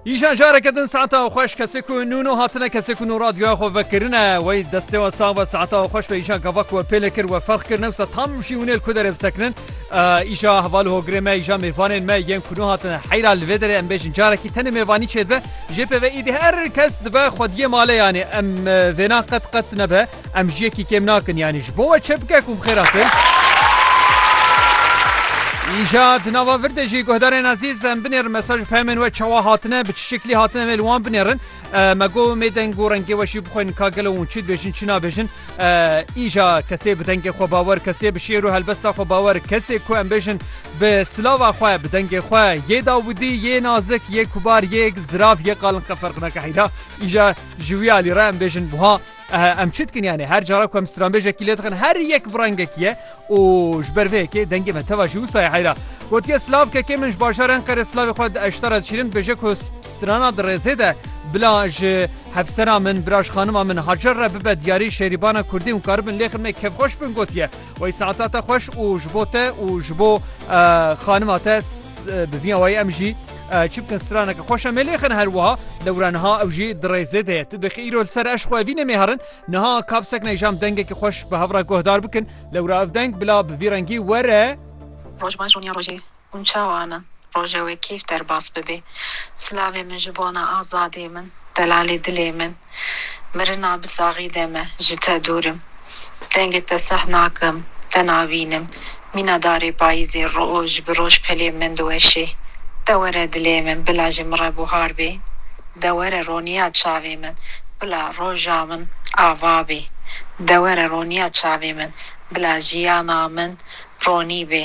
Îşan jareke din saeta xweş kesê ku nû nû hatine kesê ku nû radyoya xwe vekirine wey destê we sağ be saeta xweş be îşan gava ku we pêlê kir we ferq kir newsa tam jî hûnêl ku derê bisekinin îşa heval hogirê me îşa mêvanên me yên ku nû hatine heyra li vê derê em bêjin carekî tenê mêvanî çêdibe jê pê ve îdî her kes dibe xwediyê maleyanê em vêna qet qet nebe Em ji yekî kêm nakin yanî ji bo we çi bike ku bi xêr hatin. Îja di nava vir de jî guhdarên ezîz em binêrin mesaj û peyamên we çawa hatine bi çi şeklî hatine em ê li wan binêrin me go mê deng û rengê we jî bixwînin ka gelo hûn çi dibêjin çi nabêjin îja kesê bi dengê xwe bawer kesê bi şêr û helbesta xwe bawer kesê ku em bêjin bi silava xwe bi dengê xwe yê dawidî yê nazik yê kubar yê zirav yê qalin qeferqineke heyda îja ji wî alî re em bêjin buha Em çi dikin yanê her cara ku em stranbêjekî lê dixin her yek bi rengekî ye û ji ber vê yekê dengê me teva jî wisa ye heyra. Gotiye slavkekê min ji bajarê Enqerê slavê xwe di eştara dişînim dibêje ku strana di rêzê de bila ji hevsera min, bila ji xanima min Hacer re bibe diyarî şerîbana kurdî hûn karibin lê xidmê kevxweş bin gotiye. Wey saeta te xweş û ji bo te û ji bo xanima te bi vî awayî em jî çi bikin straneke xweş em ê lêxin her wiha lewra niha ew jî di rêzê de ye tu dixî îro li ser eş xwe vî nemê herin niha kapsek ne jam dengekî xweş bi hev re guhdar bikin lewra ev deng bila bi vî rengî were Roj baş rûniya rojê. Hûn çawan in roja we keyf derbas bibê. Silavê min ji bona azadiyê min, delalê dilê min. Mirina bi saxî de me, ji te dûr im. Dengê te seh nakim, te nabînim. Mîna darê payîzê roj bi roj pelê min diweşê. De were dilê min, bila ji min re buhar bê. De were roniya çavê min, bila roja min ava bê. De were roniya çavê min, bila jiyana min ronî bê.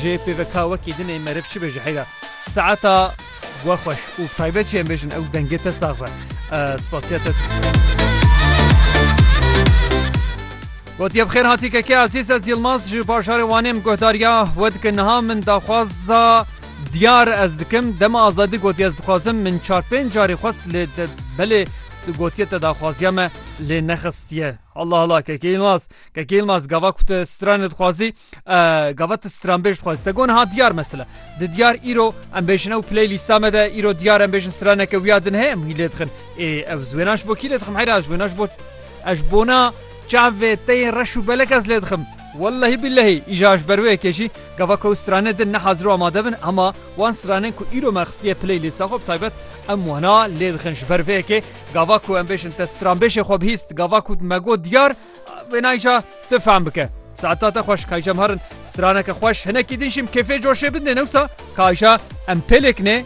Ji pêvek wekî din ê meriv çi bê ji heyra saeta we xweş û taybet jî em bêjin ew dengê te sax be. Spasiya te. Gotiye bi xêr hatî keke ezîz ez Yilmaz ji bajarê Wanê min guhdariya we dikin niha min daxwaza diyar ez dikim dema azadî gotiye ez dixwazim min çar pênc carî xwest lê te belê tu gotiye te daxwaziya me lê nexistiye. Hala hala keke Yilmaz keke Yilmaz gava ku tu stranê dixwazî Gava tu stranbêj dixwaz te gon ha diyar mesela di diyar îro em bêjin ew play lîsta me de îro diyar em bêjin straneke wiya din heye em hî lê dixin ê ev wênaş bo kî lê dixim heyra ji wênaş bo ez bona çavê teyên reş û belek ez lê dixim Wellehî billehî îja ji ber wê kêjî gava ku strane din ne hazir û amade bin hema wan stranên ku îro me xistiye play lîsta xwe bi taybet em wana lê dixin ji ber vê yekê gava ku em bêjin te stranbêjê xwe bihîst gava ku me got diyar Vê nayê ca tu fehm bike. Saeta te xweş kayca em herin straneke xweş hinekî din jî em kêfê coşê bidinê newsa kayca em pêlêk nê.